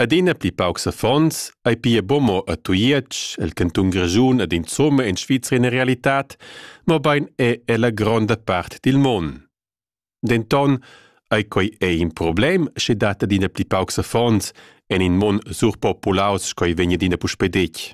Adina pli paucs affons ei pia buca a Tujetsch, el cantun Grischun ed insomma in Svizra ina realitad, mobein è ella gronda part dil mon. Denton ei quei ei in problem, sche dat adina pli paucs affons en in mon surpopulaus sco ei vegn adina puspei detg.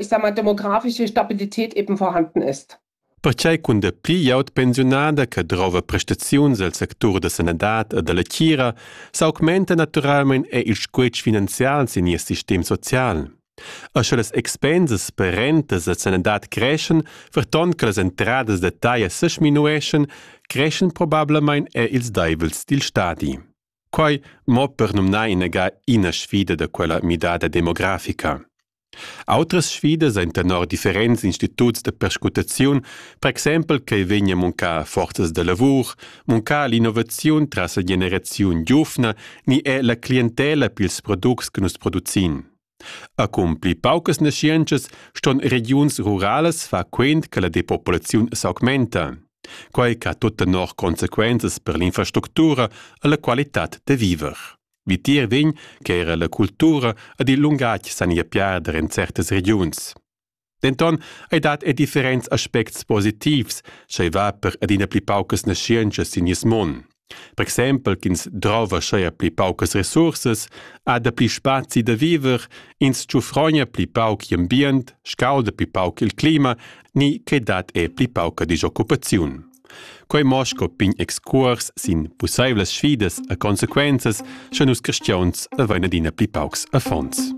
ich sag mal, demografische Stabilität eben vorhanden ist. Pertgei cun de pli jaut pensiunada che drova prestaziuns el sectur da sanadad e dalla tgira s'augmenta naturalmein è il squetsch finanzial sin nies sistem social. E sche las expensas per rentas e sanadad creschen, verton che las entradas da taglia sesminueschen, creschen probablamein er ils deivels dil stadi. Quai mo per numnar inagà ina sfida da quella midada demografica. Autras sfidas ein tenor differents instituts da perscrutaziun, per exempel ch'ei vegn a muncar forzas da lavur, muncar l'innovaziun tras la generaziun giuvna ni è la clientela pils products che nus producin. Accumpli paucas naschientschas ston regiuns ruralas far quent che la depopulaziun s'augmenta, quai ch'ha tut tenor consequenzas per l'infrastructura e la qualitad da viver. Vitier vegn che era la cultura ed il lungatg san ir piarder en certas regiuns. Denton ei dat er differents aspects positivs, sch'ei va per adina pli paucas naschientschas sin nies mon. Per exempel ch'ins drova scheia pli paucas resursas, ha dapli spazi da viver, ins tschufrogna pli pauc gl'ambient, scauda pli pauc il clima, ni che dat è pli pauca disoccupaziun. Quei mo sco pign excuors sin pusseivlas sfidas a consequenzas, sche nus cristiauns avein adina pli paucs affons.